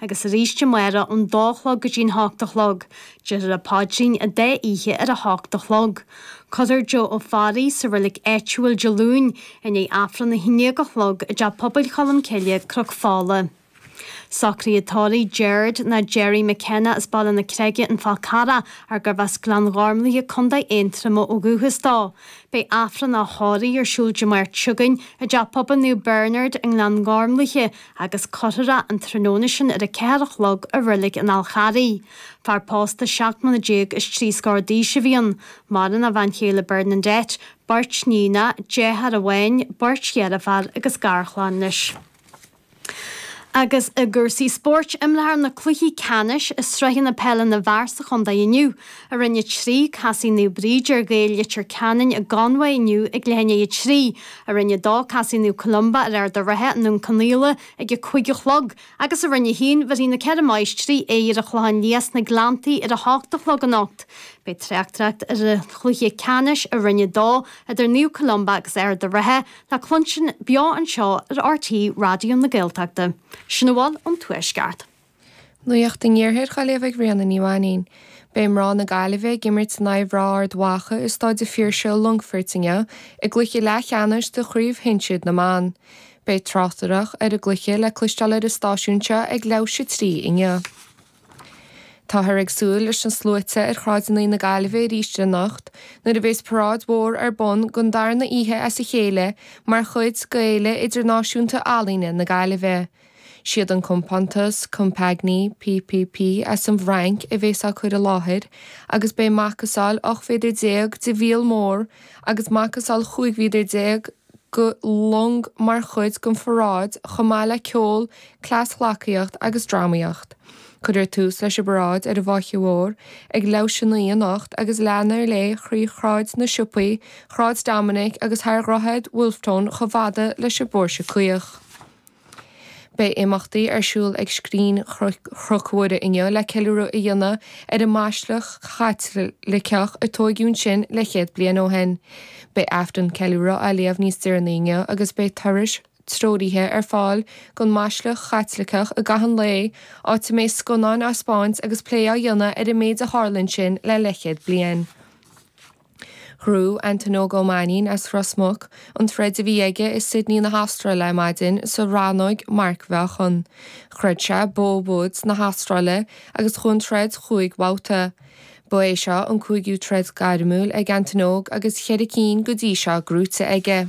agus arís amárach ón dó a chlog go dtí an hocht a chlog. Déarfar an Paidrín an dá oíche ar a hocht a chlog. Cuirfear Joe Ó Fearraigh sa reilig áitiúil Dé Luain i ndiaidh Aifreann a haon déag a chlog i dTeach Pobail Cholm Cille, Cnoc Fola. Socruithe tórraimh Gerard nó Gerry McKenna as Baile na Creige An Fál Carrach ar gurbh as Gleann Ghormlaithe, Contae Aontroma ó dhúchas dó. Beidh Aifreann a thórraimh ar siúl Dé Máirt seo chugainn i dTeach Pobail Naomh Bernard i nGleann Gormlaithe agus cuirfear é an tráthnóna sin ar a ceathair a chlog i reilig an Fháil Charraigh. Fear pósta seacht mbliana déag is trí scór d'aois a bhí ann. Maireann a bhean chéile Bernadette, beirt níonacha, deartháir amháin, beirt dheirfiúr agus garchlann leis. Agus i gcúrsaí spóirt, imreofar na cluichí ceannais i sraitheanna peile na bhfear sa chontae inniu. i Roinn a trí, casfaidh Naomh Bríd ar Ghaeil Leitir Ceanainn i gConmhaigh inniu ag leath i ndiaidh a trí, i Roinn a dó, casfaidh Naomh Columba ar Ard an Rátha i nDún Cionnaola ag a cúig a chlog, agus i Roinn a haon, bhéarfaidh na Ceithre Máistrí aghaidh ar an Chlochán Liath sna Gleanntaí ar a hocht a chlog anocht. Beidh tráchtaireacht ar an chluiche ceannais i Roinn a dó idir Naomh Columba agus Ard an Rátha le cluinstin beo anseo ar RTÉ Raidió na Gaeltachta. Sin a bhfuil ón Tuaisceart. Nuacht an Iarthair á léamh ag Ríona Ní Mhainín. Beidh mná na Gaillimhe ag imirt in aghaidh mhná Ard Mhacha i Staid an Phiarsaigh i Longfoirt inniu i gcluiche leathcheannais de chraobh shinsir na mban. Beidh tráchtaireacht ar an gcluiche le cloisteáil ar an stáisiún seo ag leathuair tar éis a trí inniu. Táthar ag súil leis na sluaite ar shráideanna na Gaillimhe arís anocht nuair a bhéas paráid mhór ar bun don darna oíche as a chéile mar chuid d'Fhéile Idirnáisiúnta Ealaíne na Gaillimhe. Siad an compántas Compagnie PPP as an bhFrainc a bhéas á cur i láthair agus beidh macasáil 18 méadar de mhíol mór agus macasáil 15 mhéadar de long mar chuid den pharáid chomh maith le ceol, cleasghleacaíocht agus drámaíocht. Cuirfear tús leis an bparáid ar an bhFaiche Mhór ag leathuair tar éis a naoi anocht agus leanfar léi thrí Shráid na Siopaí, Shráid Dominic agus thar Dhroichead Wolfe Tone chomh fada leis an bPóirse Caoch. Beidh imeachtaí ar siúl ag Scrín Chnoc Mhuire inniu le ceiliúradh a dhéanamh ar an mBaisleac Chaitliceach a tóigeadh ansin leithchéad bliain ó shin. Beidh Aifreann ceiliúrtha á léamh níos deireanaí inniu agus beidh turais treoraithe ar fáil gon mBaisleac Chaitliceach i gcaitheamh an lae, áit a mbeidh scannáin á spáint agus plé á dhéanamh ar an méid a tharla ansin le leithchéad bliain. Ghnóthaigh Antain Óg Ó Mainín as Ros Muc an troid a bhí aige i Sydney na hAstráile ar maidin sa rannóg marcmheáchan. Throid sé Beau Woods na hAstráile agus chuaigh an troid chúig bhabhta. Ba é seo an cúigiú troid gairmiúil ag Antain Óg agus ceithre cinn go dtí seo gnóthaithe aige.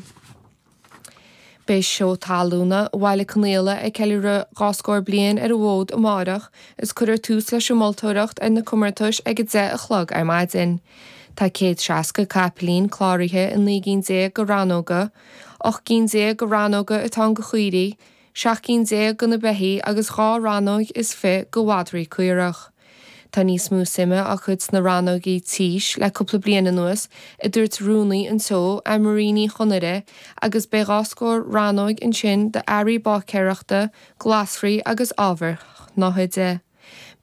Beidh Seó Talúna Bhaile Conaola ag ceiliúradh dhá scór bliain ar an bhfód amárach agus cuirfear tús leis an moltóireacht ar na comórtais ag a deich a chlog ar maidin. Tá céad seasca capaillín cláraithe i naoi gcinn déag de rannóga. Ocht gcinn déag de rannóga atá ann go chaoirigh. seacht gcinn déag go na beithígh agus dhá rannóig is fiche go mhadraí caorach. Tá níos mó suime á cur sna rannóigí tís le cúpla bliain anuas, a dúirt rúnaí an tseó, Ann Marie Ní Chonaire, agus beidh dhá scór rannóig ansin d'earraí báicéireachta, glasraí agus ábhair shnáthaide.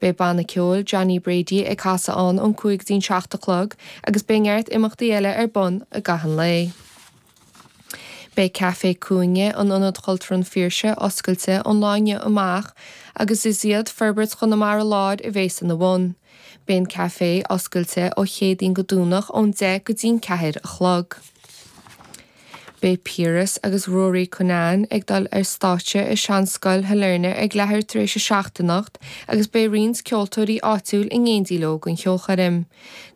Beidh banna ceoil Johnny Brady ag casadh ann ón cúig go dtí'n seacht a chlog agus beidh neart imeachtaí eile ar bun i gcaitheamh an lae. Beidh Café Cúinne, in Ionad Cultúrtha an Phiarsaigh, oscailte ón lá inniu amach agus is iad Forbairt Chonamara Láir a bhéas ina bhun. Beidh an café oscailte ó Chéadaoin go Domhnach ón deich go dtí'n ceathair a chlog. Beidh Piaras agus Ruairí Conneff ag dul ar stáitse i Seanscoil Shailearna ag leathuair tar éis a seacht anocht agus beidh roinnt ceoltóirí áitiúil in éindí leo don cheolchoirm.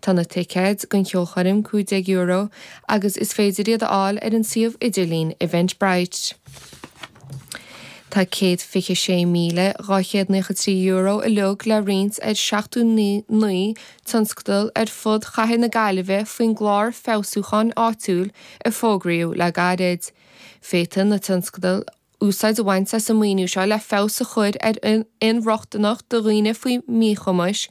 Tá na ticéid don cheolchoirm €15 agus is féidir iad a fháil ar an suíomh idirlín Eventbrite. Tá €126,293 uilig le roinnt ar sheachtó naoi tionscadal ar fud Chathair na Gaillimhe faoin gClár Feabhsúcháin Áitiúil a fógraíodh le gairid. Féadfaidh na tionscadail úsáid a bhaint as an maoiniú seo le feabhas a chur ar inrochtaineacht do dhaoine faoi mhíchumais,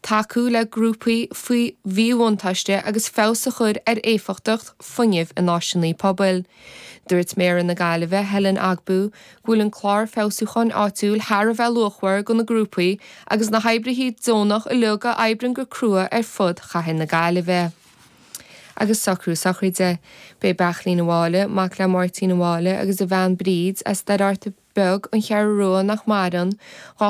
tacú le grúpaí faoi mhíbhuntáiste agus feabhas a chur ar éifeachtacht fuinnimh in áiseanna pobail. Dúirt Méara na Gaillimhe, Helen Ogbu, go bhfuil an Clár Feabhsúcháin Áitiúil thar a bheith luachmhar do na grúpaí agus na hoibrithe deonacha uilig a oibríonn go crua ar fud Chathair na Gaillimhe. Agus socrú sochraide. Beidh Beartlín an Mháille, mac le Máirtín an Mháille agus a bhean Bríd, as Doire Fhearta Beag, An Cheathrú Rua, nach maireann, dhá